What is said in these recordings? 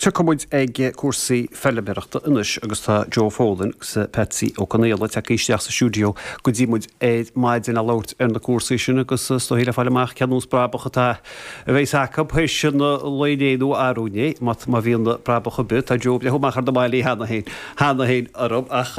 Tiocfaidh muid ag cúrsaí feilméarachta anois agus tá Joe Folan agus Patsy Ó Conghaile ag teacht isteach sa stiúdio go dtí muid ar maidin a labhairt ar na cúrsaí sin agus is dóigh le fáil amach cén nós brabach atá a bhéas acu théis an lae inné nó arú inné má bhíonn brabach ar bith. Tá Joe ag breithniú amach ar na malaí cheana féin cheana féin orm ach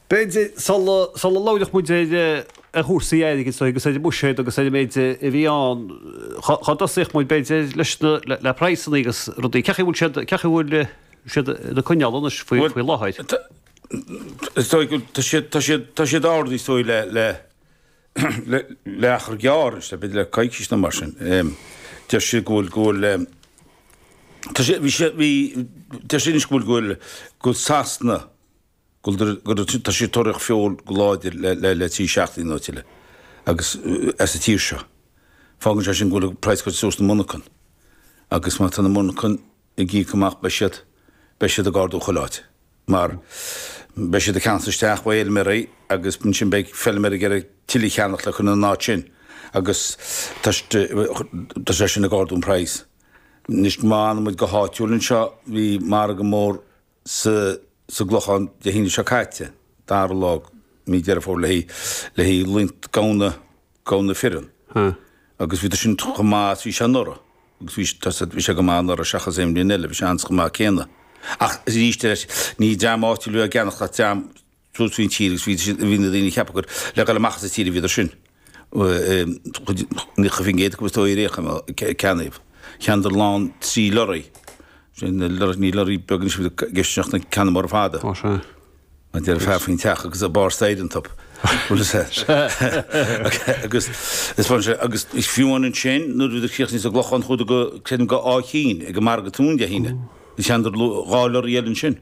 B'fhéidir sula labhroidh muid ar chúrsaí airgid Joe agus ar an mbuiséad agus ar an méid a bhí ann dhá dtosaíodh muid b'fhéidir leis na le praghsanna agus rudaí. Cé' bhfuil siad cé' bhfuil siad ag coinneáil anois faoi faoi láthair? Is dóigh go tá siad tá siad tá siad ard is dóigh le le le le achar gearr is le bit le coicís nó mar sin. Deir siad go bhfuil go bhfuil Tá sé bhí sé bhí Deir sin is go bhfuil go bhfuil Sasana Tá sé ag tóraíocht feoil go láidir le trí seachtaine nó tuilleadh agus as an tír seo. Fágann sé sin go bhfuil an praghas ag goil suas sna monarchain agus má tá na monarchain ag íoc amach beidh siad, beidh siad ag ardú chuile áit mar beidh siad ag ceannacht isteach ó fheilméaraí agus ansin beidh feilméaraí ag iarraidh tuilleadh a cheannacht le cur ina n-áit sin agus tá sé sin ag ardú an praghas. Anois má fhanaimid go háitiúil anseo, bhí margadh mór, sa gClochán Dé hAoine seo caite, 2ú lá Mí Deireadh Fómhair le haghaidh le haghaidh gamhna gamhna fireann agus bhí sin chomh maith is bhí sé anuraidh agus bhí sé, bhí sé go maith anuraidh seachas aon bhliain eile, bhí sé an-chomh maith céanna ach arís eile ní dream áitiúil a bhí á gceannacht ach dream thíos an tír agus bhí na daoine ag ceapadh gur le dul amach as an tír a bhíodar sin. Ní chuirfinn geit acub is dóigh ar aon chuma. Ceann díobh, cheannaíodar lán trí lorraí, ní lorraí beag anois a bhí i gceist ach ceanna móra fada. Ó sea. An deireadh fear faoin teach agus a barr staighre iontub. Agus is bhain sé, agus fiú amháin sin nuair a bhíodar críochnaithe sa gClochán chuadar go, creidim go Áth Chinn ag an margadh Tón Dé hAoine. Cheannaíodar dhá lorraí eile ansin.